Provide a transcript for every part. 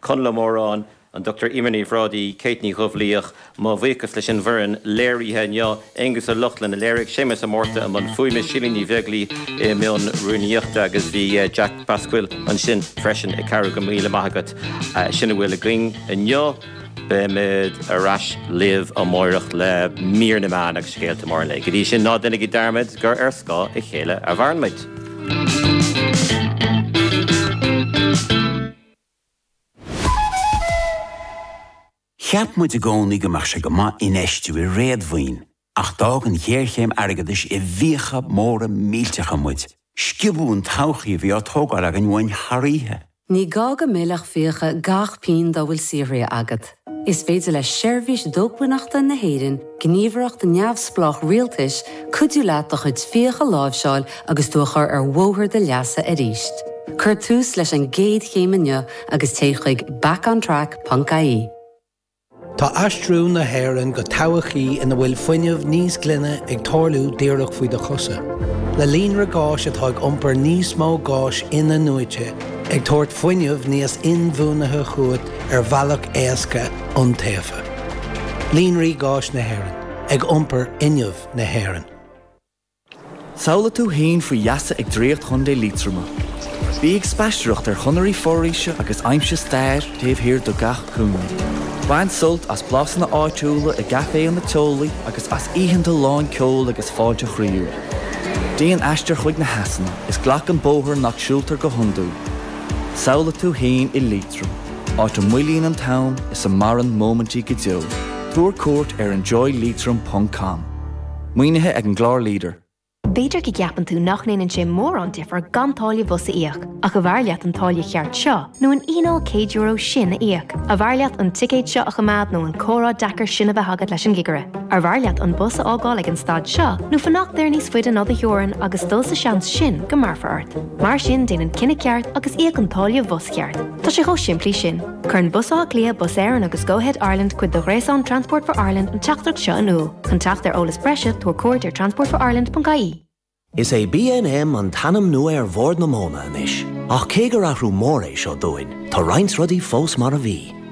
Conall Ó Móráin, an Dr Emer Ní Bhrádaigh, Kate Ní Dhubhlaoich, mo bhuíochas leis an bhfoireann léirithe inniu, Aengus Ó Lochlainn a léirigh, Séamus Ó Márta i mbun fuaime, Síle Ní Bheaglaoi i mbun rúnaíochta agus bhí Jack Basquel ansin freisin ag cabhrú. Go raibh míle maith agat. Sin a bhfuil againn inniu, beimid ar ais libh amárach le mír na meán agus scéalta móra an lae. Go dtí sin, ná déanaigí dearmad gur ar scáth a chéile a mhaireann muid. Cheap muid i gcónaí go mbeadh sé go maith infheistiú i réadmhaoin, ach d'fhág an ghéarchéim airgeadais i bhfiacha móra millteacha muid. Sciobadh an todhchaí a bhí á tógáil againn uainn thar oíche. Ní gá go millfeadh fiacha gach pingin dá bhfuil saothraithe agat. Is féidir le Seirbhís Dócmhainneachta na hÉireann, gníomhaireacht neamhspleách rialtais, cuidiú leat do chuid fiach a láimhseáil agus tú a chur ar bhóthar do leasa arís. Cuir tús leis an gcéad chéim inniu agus téigh chuig backontrack.ie. Tá aistriú na hÉireann go todhchaí ina bhfuil fuinneamh níos glaine ag tarlú díreach faoi do chosa. Le líonra gáis atá ag iompar níos mó gáis inathnuaite, ag tabhairt fuinneamh níos inbhuanaithe chugat, ar bhealach éasca iontaofa. Líonraí Gáis Éireann, ag iompar fhuinneamh na hÉireann. Samhlaigh tú fhéin faoi gheasa ag Draíocht Chontae Liatroma. Bí ag spaisteoireacht ar chonairí foraoise agus aimsigh stair taobh thiar de gach cúinne. Bain sult as blasanna áitiúla i gcaiféanna teolaí agus as oícheanta lán ceoil agus fáilte chroíúil. Déan aistear chuig na heasanna is glac an bóthar nach siúltar go hiondúil. Samhlaigh tú fhéin i. áit a mhoillíonn an t-am is a maireann móimintí go deo, tabhair cuairt ar enjoyleitrim ponc com. Maoinithe ag an gclár leader. B'fhéidir go gceapann tú nach ndéanann sé mórán difear gan táille bhus a íoc, ach ab fhearr leat an táille cheart seo nó an fhíneáil €100 sin a íoc? Ab fhearr leat an ticéad seo a choimeád nó an comhrá deacair sin a bheith agat leis an gcigire? Ab fhearr leat an bus a fhágáil ag an stad seo nó fanacht air níos faide ná do theorainn agus dul sa seans sin go mbéarfar ort? Mar sin déan an cinneadh ceart agus íoc an táille bhus cheart. Tá sé chomh simplí sin. Cuireann Bus Átha Cliath, Bus Éireann agus Go-Ahead Ireland cuid de ghréasán Transport for Ireland an teachtaireacht seo in iúl. Chun teacht ar eolas breise tabhair cuairt ar transportforireland.ie. Is é BNM an t-ainm nua ar Bhord na Móna anois, ach cé gur athrú mór é seo dúinn, tá roinnt rudaí fós mar a bhí.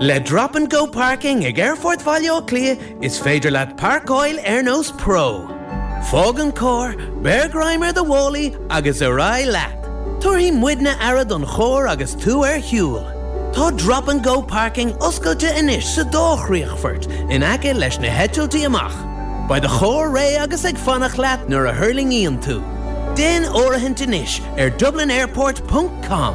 Le Drop and Go Parking ag Aerfort Bhaile Átha Cliath is féidir leat parcáil ar nós pro. Fág an carr, beir greim ar do mhálaí agus ar aghaidh leat! Tabharfaidh muidne aire don charr agus tú ar shiúl. Tá Drop and Go Parking oscailte anois sa dá chríochfort in aice leis na heitiltí amach. Beidh do charr réidh agus ag fanacht leat nuair a thuirlingíonn tú. Déan áirithint anois ar dublinairport.com.